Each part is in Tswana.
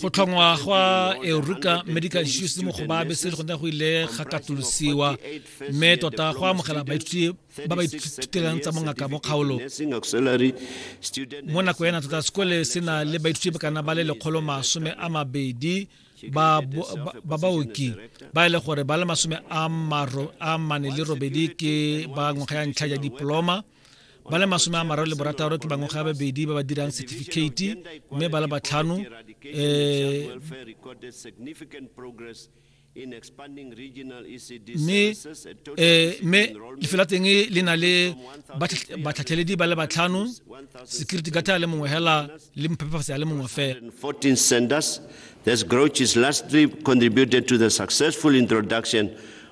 go tlhongwa gwa euruka medical institute mo go babe se gone go ile ga katolosiwa mme tota go amogela baithuti ba ba ithutelang tsa mongaka mo kgaolo mo nako ena tota sekole se na le baithuti ba kana ba le lekgolo masome a mabedi ba baoki ba e le gore ba le masome a mane le robedi ke ba ngwaga ya ntlha ya diploma ba le masome a mararo le borataro ke bangwe ga babedi ba ba dirang certificate mme ba le batlhano eh, mme eh, mme lefelo la teng le na le batlhatlheledi ba le batlhano security gata le mongwe hela le mphepafatsi ya le mongwe fela This grouch is lastly contributed to the successful introduction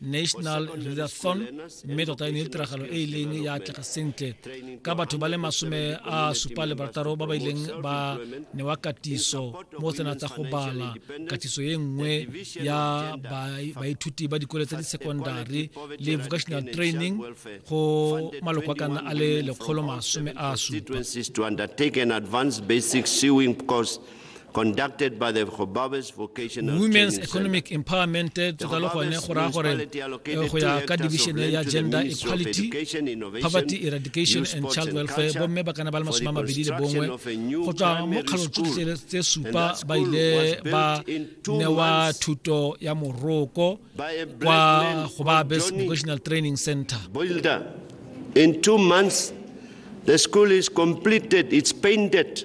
national readathon mme tota e ne e tiragalo e e leng ya atlega sentle ka batho ba le masome a supa le barataro ba ba ileng ba newa katiso mo tsena tsa go bala katiso e nngwe ya baithuti ba dikole tsa di-secondary le vocational training go maloko a kana a le lekgolo masome a supa conducted by the Gobabis Vocational Women's Economic Empowerment tota le gone go raya gore eh, go ya ka division ya gender equality poverty eradication and child welfare bomme ba kana ba le masome a mabedi le bongwe go tswa mo kgalo tsotlhe tse supa ba ile ba newa thuto ya moroko kwa Gobabis Vocational Training Center In two months, the school is completed, it's painted,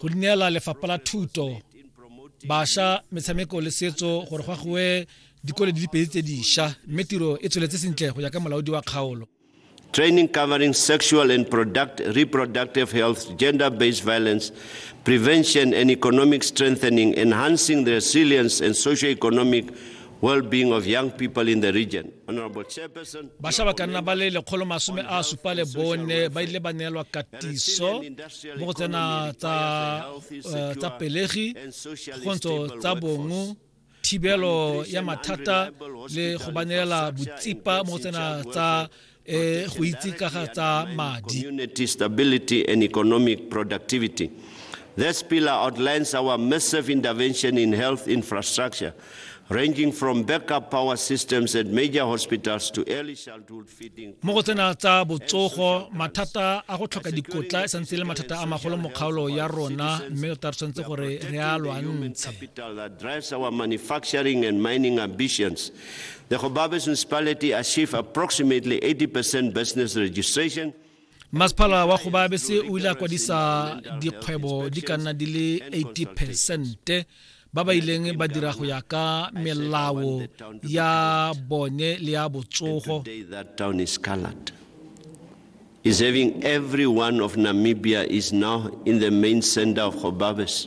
go neela lefapha la thuto bašwa metshameko le setso gore go agiwe dikole di le pedi tse dišwa mme tiro e tsweletse sentle go ya ka molaodi wa kgaolo training covering sexual and product, reproductive health, gender based violence, prevention, and economic strengthening, enhancing the resilience and socio-economic well-being of young people in the region. Honorable Chairperson, basha ba ka nna ba le lekgolo masome a supa le bone ba ile ba neelwa katiso mo go tsena tsa eh, tsa pelegi kgontsho tsa bongo thibelo ya mathata le go banelela botsipa mo go tsena tsa eh, go itse ka ga tsa madi stability and economic productivity This pillar outlines our massive intervention in health infrastructure ranging from backup power systems at major hospitals to early childhood feeding mo go tsena tsa botsogo mathata a go tlhoka dikotla e santse le mathata a magolo mo kgaolo ya rona mme o tla re tshwanetse gore re a lwantshe drives our manufacturing and mining ambitions the Gobabis municipality achieve approximately 80% business registration masepala wa go baabese o ile a kwadisa dikgwebo di ka nna di le 80 percente ba ba ileng ba dira go ya ka melao ya bone le ya botsogo is having every one of Namibia is now in the main center of Hobabes.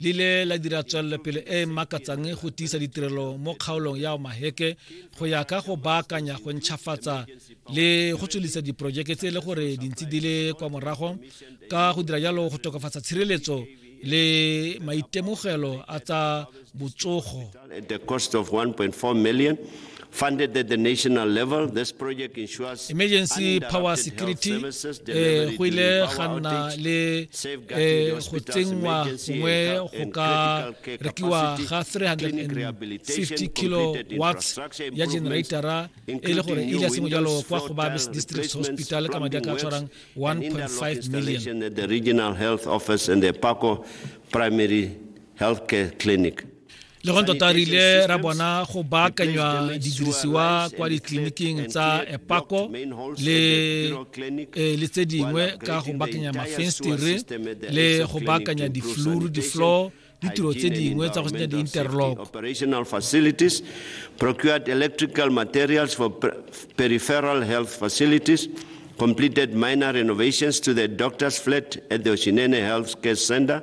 le ile la dira tswelelopele e e makatsang go tiisa ditirelo mo kgaolong ya omaheke go ya ka go baakanya go ntšhafatsa le go tswelisa diporojeke tse e le gore dintsi di le kwa morago ka go dira jalo go tokafatsa tshireletso le maitemogelo a tsa botsogo At the cost of 1.4 million, funded at the national level, this project ensures emergency power security eh, go ile ga nna le eh, go tsenngwa gongwe go ka rekiwa ga 350 kilowatts ya generatara e le gore e ja sengwe jalo kwa go ba district hospital ka madi a ka tshwarang 1.5 million the regional health office and the paco primary healthcare clinic le go tota re ile ra bona go baakanywa didirisiwa kwa ditleliniking tsa epako le eh, le tse dingwe ka go baakanya mafenstere le go baakanya difluru difloor ditiro tse dingwe tsa go senya di-interlock operational facilities procured electrical materials for peripheral health facilities completed minor renovations to the doctor's flat at the Oshinene Health Care Center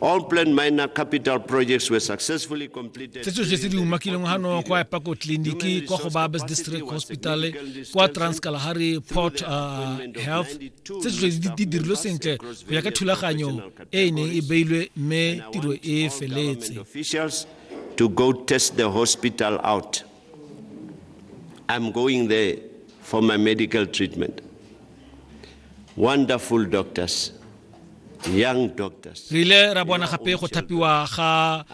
All planned minor capital projects were successfully completed. Se tsotlhe tse di umakileng gano kwa Epako Tleliniki, kwa go Babes District Hospital, kwa Transkalahari Port uh, Health, tse tsotlhe di dirilwe sentle go ya ka thulaganyo e e neng e beilwe mme tiro e feletse. to go test the hospital out. I'm going there for my medical treatment. Wonderful doctors, young doctors. Re ile ra bona gape go thapiwa ga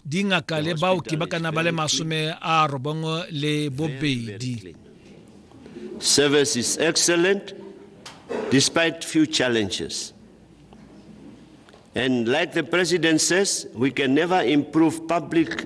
dingaka le baoki ba kana ba le masome a robongwe le bobedi. Service is excellent despite few challenges. And like the president says, we can never improve public